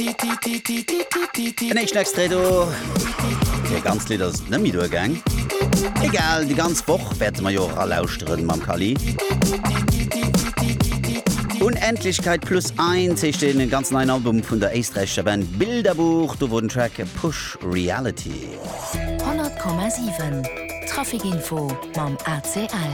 Den éischten Extrait do. Fir ganz Lidd ass et net méi duergaang. Egal, déi ganz Woch wäerte mer jo och alauschteren mam Kally. Unendlichkeit plus eins heescht dee ganz neien Album vun der éisträichescher Band Bilderbuch. Do wor den Track Push Reality. 100,7 Trafic info mam ACL.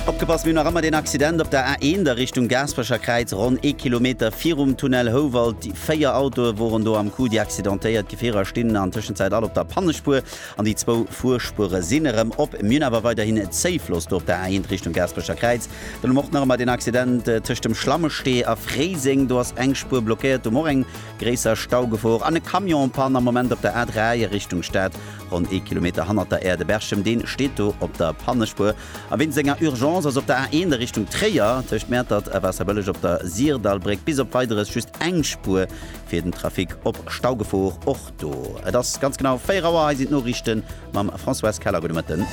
Opgepasst, mir hunn nach ëmmer deen Accident op der A1 a Richtung Gaasperecherkräiz, ronn ee Kilometer virum Tunnel Houwald. Véier Autoe woren do am Coup, déi accidentéiert Gefierer stinn an Tëschenzäit all op der Pannespuer an déi zwou Fuerspure sinn erëm op. Mir hunn awer weiderhin Zéifloss do op der A1 Richtung Gaasperecherkräiz. Dann hu mer och nach ëmmer deen Accident tëscht dem Schlammestee a Fréiseng, do ass eng Spuer blockéiert, do hu mer och eng Gréisser Staugefor an e Camion en Panne am Moment op der A3 a Richtung Stad, ronn ee Kilometer hannert der Aire de Berchem. Deen steet do op der Pannespuer a wéinst enger Urgence ass op der A1 a Richtung Tréier tëscht Mäertert a Waasserbëlleg op der Sirdallbréck bis op Weideres just eng Spuer fir den Trafic op Staugefor. Och do et ass ganz genau 4 Auer. Hei sinn d'Noriichten mam Françoise Keller. Gudde Mëtten.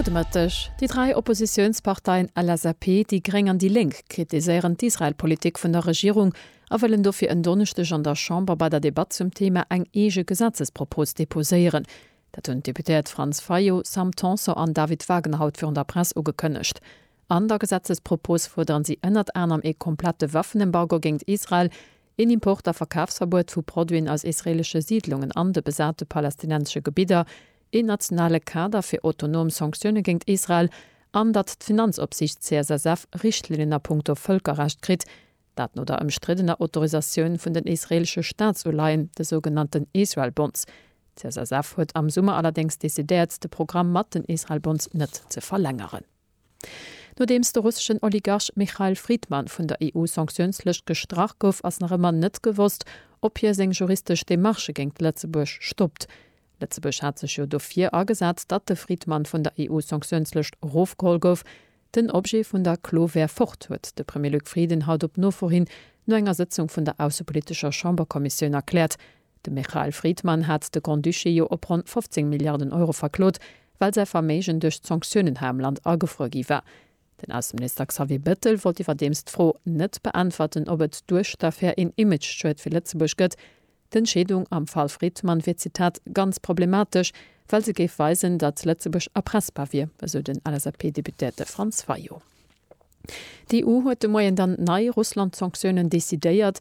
Gudde Mëtteg. Déi dräi Oppositiounsparteien LSAP, déi gréng an déi Lénk, kritiséieren d'Israel-Politik vun der Regierung a wëllen dofir en Donneschdeg an der Chamber bei der Debatt zum Thema eng eege Gesetzespropos deposéieren. Dat hunn d'Deputéiert Franz Fayot, Sam Tanson an David Wagner haut virun der Press ugekënnegt. An der Gesetzespropos fuerderen si ënnert anerem ee komplette Waffenembargo géingt Israel, een Import a Verkafsverbuet vu Produiten aus israeelesche Siidlungen an de besate palästinensesche Gebidder, een nationale Kader fir autonom Sanktioune géingt Israel an datt d'Finanzopsiicht CSSF Richtlinnen a punkto Vëlkerrecht kritt, dat no der ëmstriddener Autorisatioun vun den israeelesche Staatsuleihen, de sougenannten Israel Bonds. D'CSSF huet am Summer allerdéngs decidéiert, de Programm mat den Israel Bonds net ze verlängeren. Nodeems de russeschen Oligarch Mikhail Fridman vun der EU-Sanktiounslëscht gestrach gouf, ass nach ëmmer net gewosst, ob hie seng juristesch Demarchë géint Lëtzebuerg stoppt. Lëtzebuerg hat sech jo dofir agesat, datt de Fridman vun der EU-Sanktiounslëscht erofgeholl gouf. Den Objet vun der Klo wär fort, huet de Premier Luc Frieden haut op Nofohin no enger Sëtzung vun der aussepolitescher Chamberkommissioun erkläert. De Michael Friedman hat de Grand-Duché jo op ronn 15 Milliarden Euro verklot, well säi Verméigen duerch d'Sanktiounen hei am Land agefruer gi war. Den Ausseminister Xavier Bettel wollt iwwerdeems d'Fro net beäntwerten, ob et duerch d'Affär een Image-Schued fir Lëtzebuerg gëtt. D'Entscheedung am Fall Friedman wier, Zitat, ganz problematesch, well se géif weisen, datt Lëtzebuerg erpressbar wier, esou den LSAP-Deputéierte Franz Fayot. D'EU huet de Moien dann nei Russland-Sanktiounen decidéiert.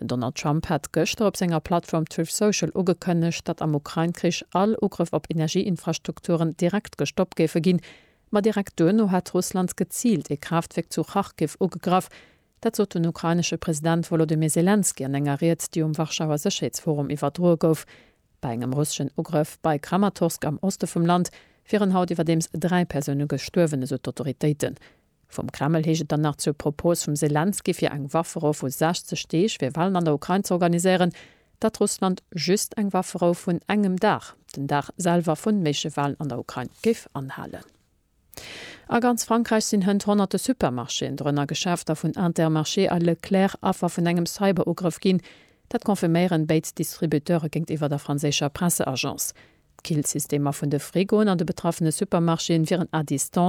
Den Donald Trump hat gëschter op senger Plattform Truth Social ugekënnegt, datt am Ukrain-Krich all Ugrëff op Energieinfrastrukturen direkt gestoppt géife ginn. Ma direkt duerno hätt Russland geziilt ee Kraaftwierk zu Charkiw ugegraff. Dat sot den ukrainesche President Wolodymyr Selenskyj an enger Ried, déi um Warschauer Sécherheetsforum iwwerdroe gouf. Bei engem russeschen Ugrëff bei Kramatorsk am Oste vum Land wieren haut iwwerdeems dräi Persoune gestuerwen, esou d'Autoritéiten. Vum Kreml heescht et dann nach zur Propos vum Selenskyj fir eng Wafferou vu 60 Deeg fir Wahlen an der Ukrain z'organiséieren, datt Russland just eng Wafferou vun engem Dag, den Dag selwer vun méigleche Wahlen an der Ukrain, géif anhalen. A ganz Frankräich sinn hënt honnerte Supermarchéen, dorënner Geschäfter vun Intermarché a Leclerc, Affer vun engem Cyber-Ugrëff ginn. Dat confirméieren béid Distributeure géintiwwer der franséischer Presseagence. D'Killsystemer vun de Frigoen an de betraffene Supermarchéen wieren à distance